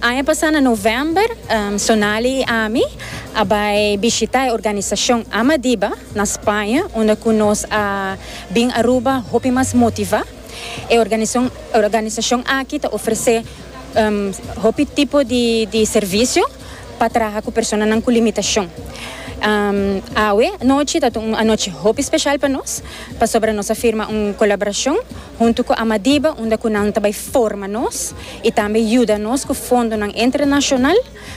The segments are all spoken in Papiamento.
Aña pasá na novèmber, Sonali i ami a bai bishitá e organisashon Amadiba na Spaña, unda ku nos a bin Aruba hopi mas motivá. E organisashon aki ta ofresé hopi tipo di servisio pa traha ku personanan ku limitashon. Awe anochi ta un anochi hopi speshal pa nos, pasobra nos a firma un kolaborashon huntu ku Amadiba unda ku nan ta bai forma nos. y tambe yuda nos cu fondonan entrenacional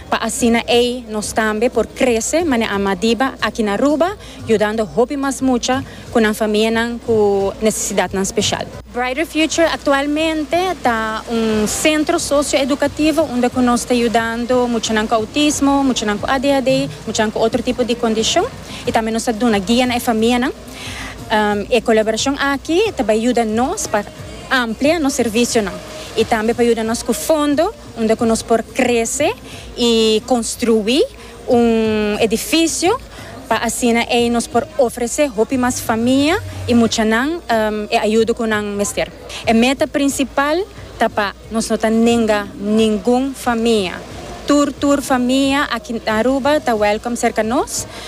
pa asina ey nos tambe por crece mane ama diba aki na Aruba yudando hopi mas mucha cu nan famianan cu necesidadnan special. Brighter Future actualmente ta un centro socio-educativo unda cu nos ta yudando muchanan cu autismo, muchanan cu adhd, muchanan cu otro tipo di condicion y tambe nos ta duna guia na e famianan. E colaboracion aki ta bay yuda nos pa. amplia nos servisionan y tambe pa yuda nos cu fondo unda cu nos por crece y construi un edificio pa asina ey nos por ofrece hopi mas famia y muchanan e ayudo cu nan mester. E meta principal ta pa nos no ta nenga ningun famia. Tur tur famia aki na Aruba ta welcome serca nos.